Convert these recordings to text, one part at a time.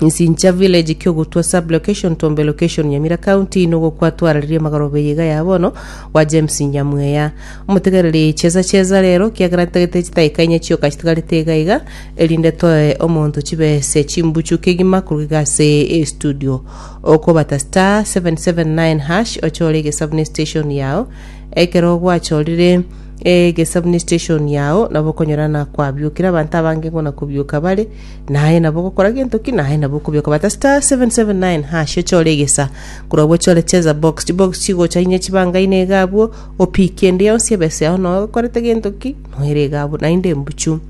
Nsincha village kiogotwa sub location tombe location nyamira county nogo kwatwararirie magoroba eye iga ya bono wa james nyamweya omotegereri chesa chesa rero kiagera ntagete chitaika inye chioka chitigarete iga iga erinde toe omonto chibese chimbuchu kegima koruga iga ase estudio okobata star 779 hash ochore egesabuni station yao ekero gwachorire egesabuni station yao nabo okonyora nakwabio kira abanto abange ngona kobioka bare Naye nabo ogokora gento ki, naye nabo okobioka. Bata star 779 hash ochore egesa. Korwa abwo ochore cheza box. Chibox chigocha inye chibanga ine iga abwo. Opiki ende yonsi ebesa yao noe okorete gento ki, noere iga abwo. Naende embuchu.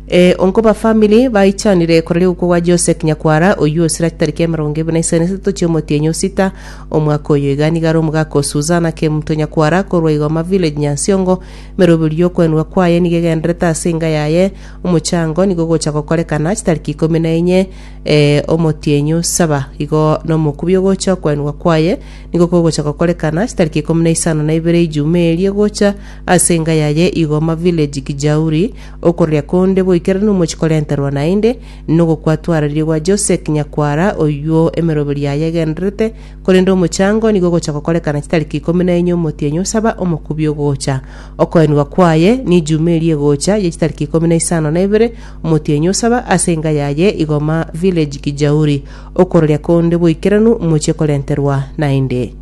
Eh, onkoba family baichanire koraria ogokwa gwa Josek Nyakwara oyio osira chitariki emerongo ebere na isano na isato chi'omotienyi osita omwaka oyo. Iga nigo are omogaka o Suzana Kemto Nyakwara korwa Igoma Village Nyansiongo. Emeroberio y'okwenwa kwaye nigo egenderete ase enga yaye. Omochango nigo ogocha gokorekana chitariki ikomi na enye, ee, omotienyu saba. Igo nomokubi ogocha okwaenwa kwaye nigo kogocha gokorekana chitariki ikomi na isano na ibere ijuma eria egocha ase enga yaye igo mavileji Gijauri, okororia konde boikeranu omochie korenterwa naende, nogokwatwarariria gwa Josek nyakwara oyuo emeroberi yaye egendererete, korende omochango nigo ogocha gokorekana chitariki ikomi na enye omotienyu saba omokubi ogocha Okoenigwa kwaye n'Ijumaa eria egocha ye chitariki ikomi na isano na ibere, omotienyi osaba ase enga yaye Igoma Village Kijauri, okororia konde boikeranu mochie korenterwa naende.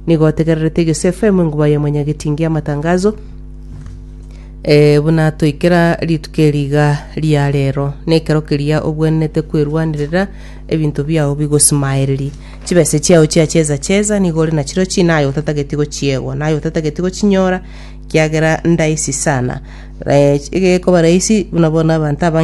Nigo otegererete Egesu FM enguma ya omonyagetingi y'amatangazo eh, buna toikera rituko eri iga ria rero, nekero keria obwenerete kwerwanerera ebinto biao bigosimaererie. Chibese chiao chia cheza cheza nigo ore nachiro china aye otatageti gochiegwa, na aye otatageti gochinyora, ekiagera ndaisi sana. Egekoba raisi buna bono abanto abange